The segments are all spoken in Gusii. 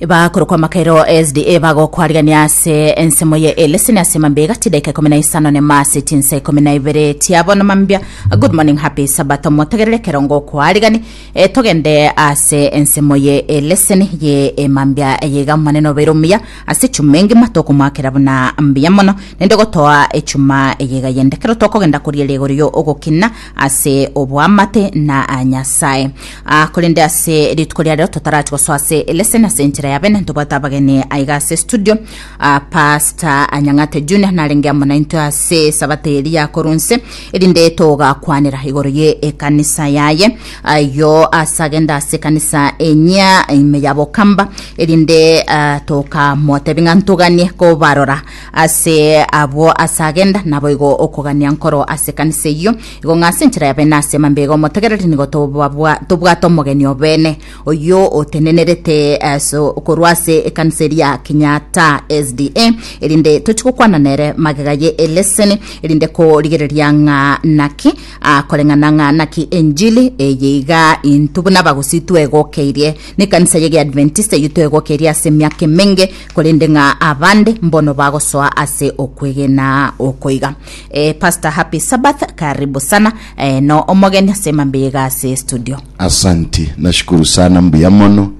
bakorokwa amakairo sda bagokwariania ase ensemo ye eleseni ase mambia egati daika ikomi na isano nema ase chinsa ikomi na ibere tiabo na mambia good morning happy sabato motegerere kero ngokwarigani e, togende ase ensemo ye eleseni ye emambia eyeiga omonene obeire omuya ase echuma engima tokomoakera buna mbuya mono nende gotoa echuma eyeiga yende kero tokogenda koria riegori yo ogokina ase oboamate na Nyasae. Ah, korende ase rituko ria rero totarachi gosoa ase lesson ase enchera ya bene ntobwate abageni aiga ase studio ah, Pastor Anyang'ate Junior narenge amo naintwe ase sabata eri yakorwa nse erinde togakwanera igoro ye ekanisa yaye ayo ase agenda ase ekanisa enyia ime ya Bokamba erinde ah, tokamotebi ng'a ntoganie kobarora Ase abwo ase agenda naboigo okogania nkoro ase ekanisa eyio, igo ng'a ase enchera ya bene ase mambia iga omotegereri nigo tobabwa- tobwate omogeni obene, oyio otenenerete ase korwa ase ekanisa eria ya Kenyatta SDA, erinde tochie gokwana nere magega ye eleseni, erinde korigereria ng'a naki akoreng'ana ng'a naki enchili eye iga intwe buna abagusii twegokeirie. Nekanisa ye Geadventista eyio twegokeirie ase emiaka emenge, korende ng'a abande mbono bagosoa ase okwegena okoiga. E, Pastor Happy Sabbath, karibu sana e, no omogeni ase mambiriga ase studio. Asanti, nashukuru sana, mbuya mono.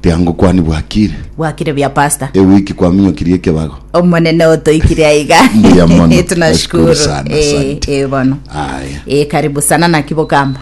Tiango kwani bwakire? Bwakire bia Pastor. Ewiki kwaminyokirie ekebago? Omonene otoikire aiga. Mbuya mono. Tunashukuru. Nashukuru sana, E, asante. e, bono. Aya. E, karibu sana naki bokamba.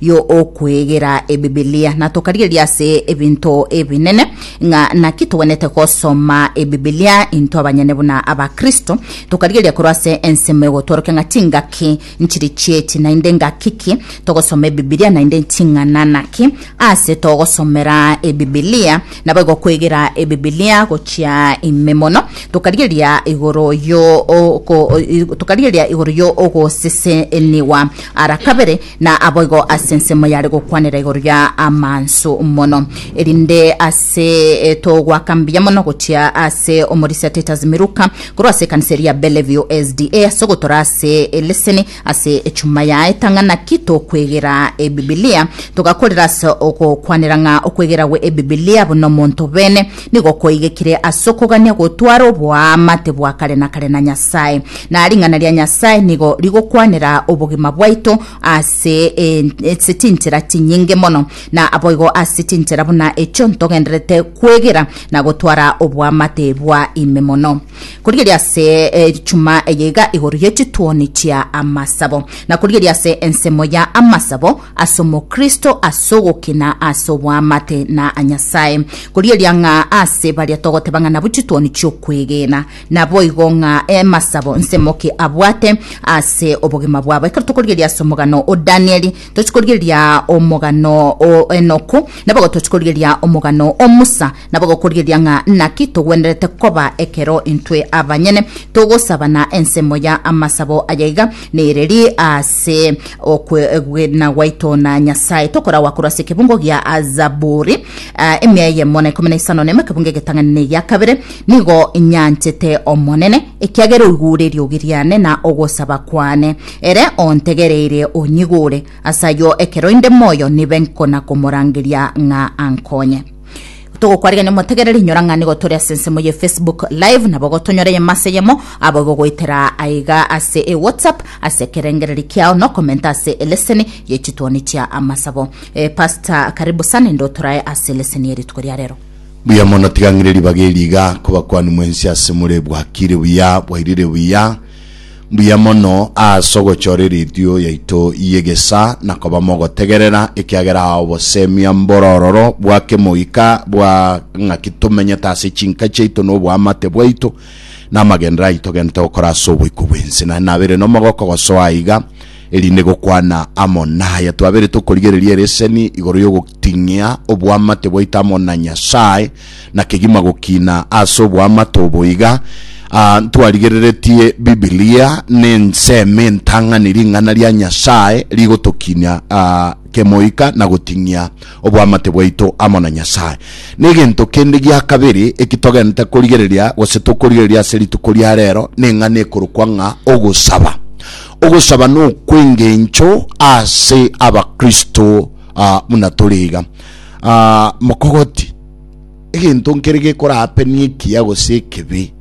yo okwegera Ebibilia, na tokarigereria ase ebinto ebinene ng'a naki togwenerete gosoma Ebibilia intwe abanyene buna Abakristo. Tokarigereria korwa ase ensemo egotworokia ng'a chingaki nchire chi'echi, naende engaki ki togosoma Ebibilia, naende ching'ana naki aase togosomera Ebibilia. Naboigo kwegera Ebibilia gochia ime mono, tokarigereria igoro yo o- ko- o- i- tokarigereria igoro yo ogosesenigwa ara kabere Na aboigo ase ensemo yare gokwanera igoro ya amanso mono, erinde ase togoaka mbuya mono gochia ase omorisia Titus Miruka korwa ase ekanisa eria ya Bellevue SDA ase ogotora ase eleseni ase echuma ya etang'a naki tokwegera Ebibilia. Togakorera ase ogokwanera ng'a okwegera gwe Ebibilia buna omonto bene Nigo kwaigekire as'okogania gotwara oboamate bwa kare na kare na Nyasae, na ring'ana ria Nyasae nigo rigokwanera obogima bwaito ase ase chinchera chinyinge mono, na aboigo ase chinchera buna echio ntogendererete kwegera na gotwara oboamate bwa ime mono. Korigeria ase echuma eyeiga igoro ye chituoni chia amasabo, na korigeria ase ensemo ya amasabo, as'Omokristo as'ogokina as'oboamate na Nyasae, korieria ng'a ase baria togoteba ng'a nabu chitwoni chi'okwegena. Naboigo ng'a emasabo nsemoki abwate ase obogima bwabo. Ekero tokorieria as'omogano o Danieli, tochi korieria omogano o Enoku, naboigo tochi korieria omogano o Musa, Nabo gokorigereria ng'a naki togwenerete koba ekero intwe abanyene togosabana, ensemo ya amasabo aya iga nereri ase okwegena gwaito na Nyasae, tokoragwa korwa ase ekebungo gia Zaburi eh, emia eyemo na ikomi na isano na emo, ekebungo egetang'ani na egia kabere, nigo nyanchete Omonene, ekiagera oigure eriogi riane na ogosaba kwane, ere ontegereire onyigure. Ase ayio ekero inde moyo nibe nkona-komorangeria ng'a ankonye. togokwarigania motegerere inyora ng'a nigo tore ase ensemo ye facebook live nabo gotonyora eyemo ase eyemo abo bogoetera aiga ase e whatsapp ase ekerengereri kiao nokomenta ase eleseni ye chitwoni chia amasabo e, eh, pastor karibu sana ende otorae ase eleseni ye rituko ria rero Buya mono tiga ng'ire ribaga eriga kobakwani mwensi ase more bwakire buya bwairire buya Mbuya mono aase ogochora eredio yaito y'egesa na koba mogotegerera, ekiagera obosemia mborororo bwa kemoika bwa ng'aki tomenyete ase chinka chiaito na oboamate bwaito na amagenderero aito gento gokora ase oboiko bw'ense. Naende nabeire nomogoko gosoa aiga, erinde gokwana amo naya twabeire tokorigereria ereseni igoro y'ogo. Ting'ia oboamate bwaito amo na Nyasae, na kegima gokina ase oboamate obo iga. Ah, ntwarigereretie Bibilia, nensemo entang'ani, ring'ana ria Nyasae, rigotokinia ah, kemoika na goting'ia oboamate bwaito amo na Nyasae. Negento kende gia kabere eki togenete korigereria, gose tokorigereria ase rituko ria rero, neng'ana ekorokwa ng'a ogosaba. Ogosaba nokwengencho ase Abakristo Ah, buna tore iga. Ah, mokogoti. Egento nkere gekorapenia ekiya gose ekebe,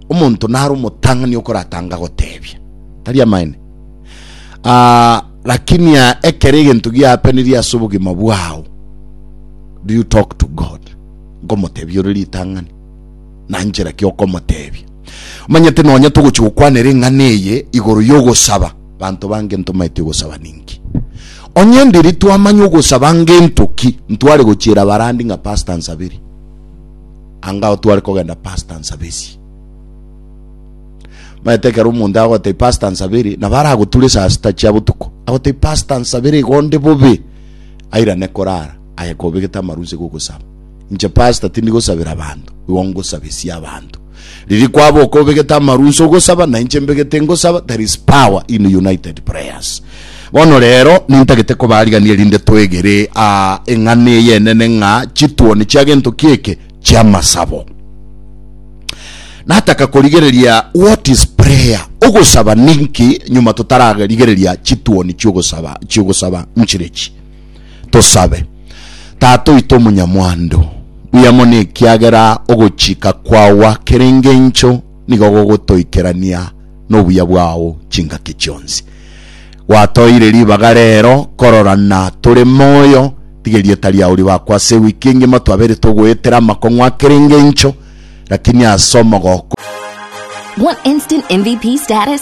omonto nare omotang'ani okoratanga gotebia. Tari amaene? Ah, lakini ah, ekero egento giapenirie ase obogima bwao, do you talk to God? Nkomotebia ore ritang'ani? Na nchera ki okomotebia? Omanyete nonye togochi gokwanera eng'ana eye igoro yogosaba, Banto bange ntomaeti ogosaba ninki? Onye ndiri twamanya ogosaba ngento ki, ntware gochiera barandi ng'a pastor nsaberie. Angao tware kogenda pastor nsabesie. Maete ekero omonto agotei pastor nsaberie, nabo aragoture saa sita chia botuko. Agotei pastor nsaberie igonde bobe. Airane korara, aye kobegete amarunse gogosaba. Inche pastor tindi gosabera banto, igo ngosabesie abanto. Riria kwaba okobegete amarunse ogosaba na inche mbegete ngosaba there is power in united prayers. Bono rero nintagete kobarigania erinde twegere a eng'ana eye enene ng'a chituoni chia gento kieke chia masabo. Nataka korigereria what is prayer? Ogosaba ninki nyuma totararigereria chituoni chiogosaba chiogosaba nchirechi. Tosabe. Tata oito omonyamwando, mbuya mono ekiagera ogochika kwao akera engencho nigo gogotoikerania nobuya bwao chingaki chionsi. Gwatoeire ribaga rero kororana tore moyo, tiga erieta riao ribakwe ase ewiki engima twabeire togoetera amakong'u akera engencho, lakini ase omogoko. Want instant MVP status?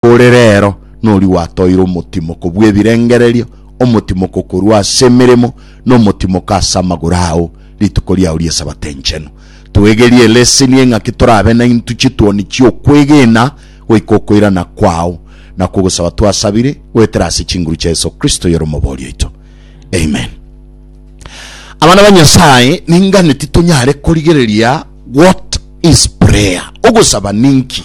Ore rero noria gwatoire omotimoko bw'ebirengererio, omotimoko korwa ase emeremo, na omotimoko ase amagoro ao rituko riao ri'Esabato enchenu. Twegerie eleseni eye ng'aki torabe naintwe chituoni chi'okwegena goika okoirana kwao, na kogosaba twasabire goetera ase chinguru chia Yeso Kristo oyore Omobori oito. Amen. Abana ba Nyasaye, ningane titonyare korigereria What is prayer? Ogosaba ninki?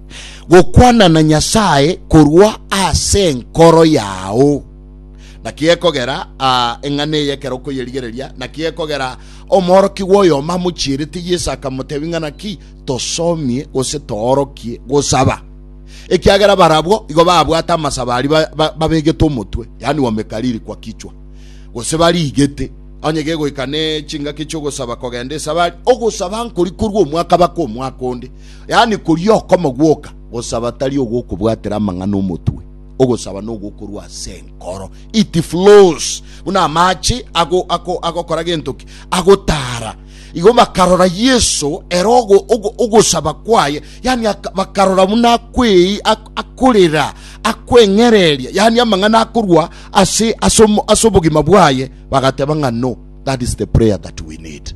gokwana na Nyasae korwa ase enkoro yao. Naki gekogera aa eng'ana eye ekero okoyerigereria, naki gekogera omworokigwa oyomo amochierete Yeso akamotebia ng'a naki tosomie gose toorokie gosaba, ekiagera barabwo igo babwate amasabo aria babegete omotwe, yaani wamekariri kwa kichwa, gose bariigete onye gegoika ne chingaki chi'ogosaba kogenda esabari, ogosaba nkori korwa omwaka baka omwaka onde. Yaani koria okoma gwoka, gosaba tari ogokobwatera amang'ana omotwe, ogosaba nogokorwa ase enkoro. It flows buna amache ago ako agokora gento ki agotara. Igo bakarora Yesu ere ogo ogo ogosaba kwaye, yaani bakarora buna akwei akorera akweng'ereria, yaani amang'ana akorwa ase ase ase obogima bwaye, bagateba ng'a no that is the prayer that we need.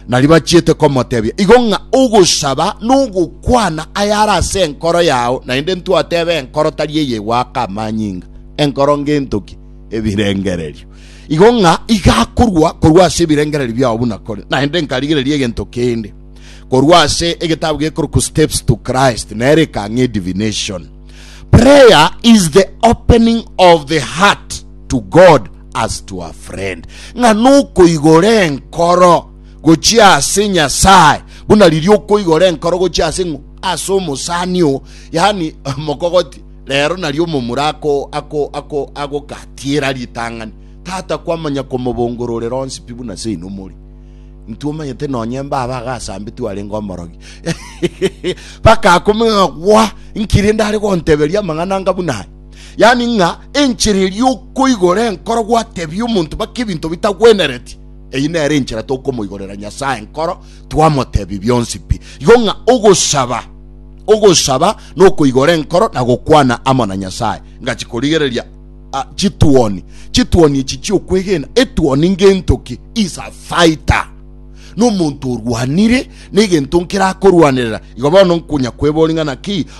na ribachiete komotebia, igo ng'a ogosaba nogokwana ayare ase enkoro yao, naende ntwateba enkoro tari eyegwaka amanyinga, enkoro ngento ki? Ebirengererio. Igo ng'a igakorwa korwa ase ebirengererio biao buna kore, naende nkarigereria egento kende korwa ase egetabu gekorokwa Steps to Christ, nere ekang'e divination. Prayer is the opening of the heart to God As to a friend, ng'a nokoigora enkoro gochia ase Nyasae, buna riria okoigora enkoro gochia ase ng'o? Ase omosani oo, yaani mokogoti, rero nario omomura ako, ako, ako, agokatiera ritang'ani. Tata kwamanya komobongororera onsi pi buna seino more. Intwe omanyete nonye mbaba agasambetu arenge omorogi. Bakakomenya gwa, nkirinde are gonteberia amang'ana anga buna yaani ng'a enchera eria okoigora enkoro gwatebia omonto bake ebinto bitagwenereti, eyi nere enchera tokomoigorera Nyasae enkoro twamotebia bionsi pi. Igo ng'a ogosaba, ogosaba nokoigora enkoro na gokwana amo na Nyasae. Ngachi korigereria ah, chituoni, chituoni echi chiokwegena. Etuoni ngento ki? Is a fighter nomonto orwanire negento nkerakorwanerera. Igo bono nkonya kwebori ng'a naki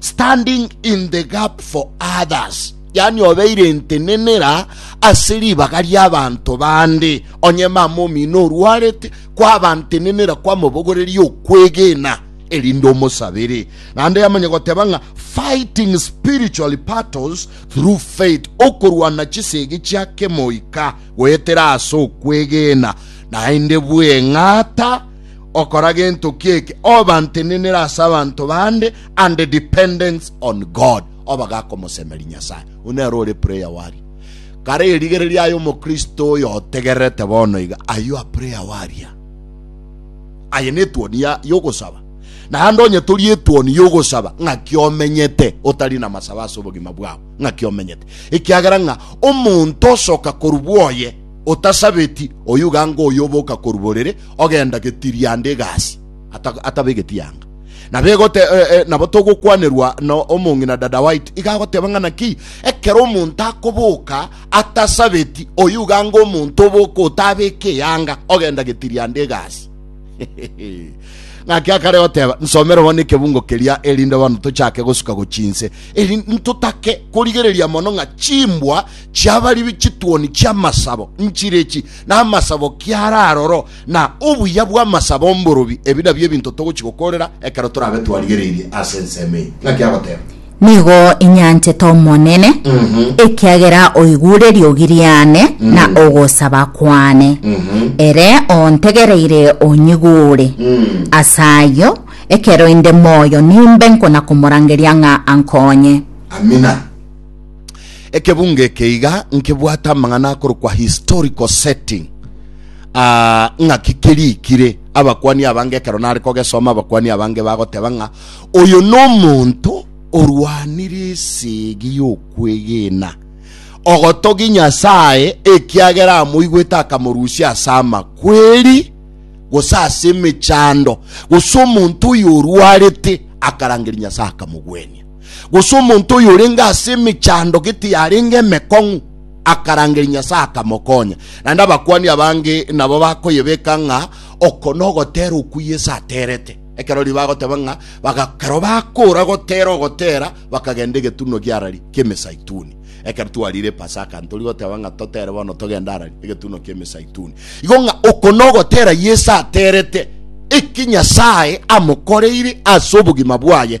standing in the gap for others, yani obeire entenenera ase ribaga riabanto bande, onye mama omino orwarete, kwaba ntenenera kwamobogoreria okwegena erinde omosabere. Naende yamanya goteba ng'a fighting spiritual battles through faith, okorwana chisegi chia kemoika goetera ase okwegena, naende bweng'ata okora gento kieke obantenenera ase abanto bande and the dependence on God oba gakomosemeri Nyasaye one aro ore prayer warrior kare erigereria ayo omokristo oyo otegererete bono iga ayo a prayer warrior aye ne tuoni ya yogosaba na ande onye tori etuoni yogosaba ng'a kiomenyete otari na masaba ase obogima bwao ng'a kiomenyete ekiagera ng'a omonto osoka korubwoye otasabeti oyuga ngo oyoboka koruborere ogenda getirianda egasi ata- atabegeti yanga. Nabo egote, eh, eh, nabo togokwanerwa na omong'ina dada waito, iga agoteba ng'a naki ekero omonto akoboka atasabeti, oyio iga anga omonto oboka otabeka eyanga, ogenda getirianda egasi. ng'aki akare goteba nsomere bono ekebungo keria erinde bono tochake gosuka gochinse eri ntotake korigereria mono ng'a chimbwa chiabaribi chituoni chiamasabo nchire echi namasabo kiaro aroro, na obuya bw'amasabo 'omborobi, ebi nabio ebinto togochia gokorera ekero torabe twarigereirie ase ensemo eye. Naki agoteba. Nigo inyanchete Omonene, ekiagera oigure riogi riane na ogosaba kwane, ere ontegereire onyigure. As'ayio, ekero inde moyo nimbe nkona-komorangeria ng'a ankonye. Amina. Ekebunga eke iga nkebwate amang'ana akorokwa historical setting ah, ng'aki kerikire abakwani abange ekero nare kogesoma abakwani abange bagoteba ng'a oyo nomonto orwanire esegi y'okwegena ogotogi Nyasaye ekiagera amoigwete akamorusia ase amakweri gose ase emechando gose omonto oyo orwarete akarangeria Nyasaye akamogwenia gose omonto oyo orenge ase emechando gete yarenge emekong'u akarangeria Nyasae akamokonya. Naende abakuani abange nabo bakoyebeka ng'a oko nogotera okwo Yesu aterete. Ekero riba agoteba ng'a bagakero bakora gotera ogotera bakagenda egetunwa gi'arari ki'emesaituni. Ekero twarire Pasaka ntori goteba ng'a totere bono togenda arari egetunwa ki'emesaituni. Igo ng'a oko nogotera Yesu aterete eki Nyasae amokoreire ase obogima bwaye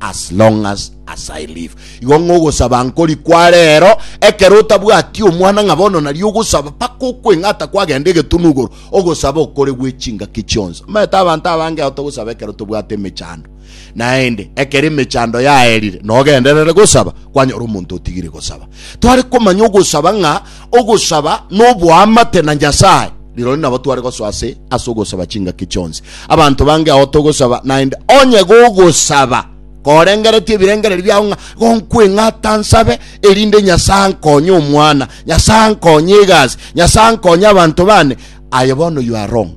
As long as as I live. Igo ng'a ogosaba nkori kware ero, ekero otabwati omwana ng'a bono nario ogosaba paka okweng'ata kwagenda egetunu igoro, ogosaba okore gwe chingaki chionsi. Omanyete abanto abange ao togosaba ekero tobwate emechando. Naende, ekero emechando yaerire, nogenderere gosaba, kwanyora omonto otigire gosaba. Tware komanya ogosaba ng'a ogosaba noboamate na Nyasae, rirorio nabo tware gosoa ase ase ogosaba chingaki chionsi. Abanto bange ao togosaba naende onye gogosaba korengeretie ebirengererio biao ng'a gonkweng'ata nsabe erinde Nyasae ankonye omwana, Nyasae ankonye egasi, Nyasae ankonye abanto bane, aye bono you are wrong.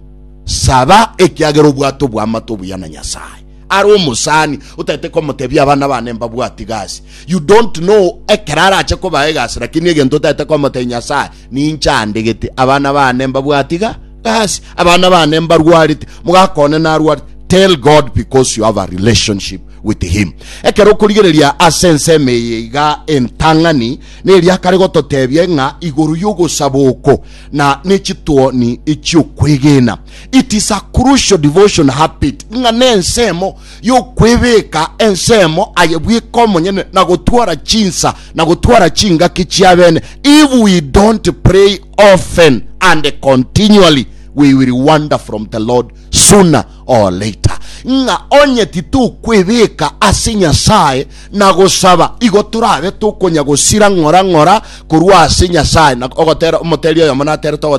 Saba ekiagera obwate oboamate obuya na Nyasae. Are omosani otagete komotebia abana bane mbabwati gasi. You don't know ekero arache koba egasi lakini egento otagete komote Nyasaye ninche andegete abana bane mbabwati ga gasi abana bane mbarwarete mogakone narwarete tell God because you have a relationship with him ekero okorigereria ase enseme eye iga entang'ani neria kare gototebia ng'a igoro yogosaba oko na nechituoni chiokwegena It is a crucial devotion habit ng'a nensemo yokwebeka ensemo aye bweka omonyene na gotwara chinsa na gotwara chingaki chiabene. If we don't pray often and continually, we will wander from the Lord sooner or later. Ng'a onye titokwebeka ase Nyasaye na gosaba, igo torabe tokonya gosira ng'ora ng'ora korwa ase Nyasaye. Ogotera omoteria oyomo naterete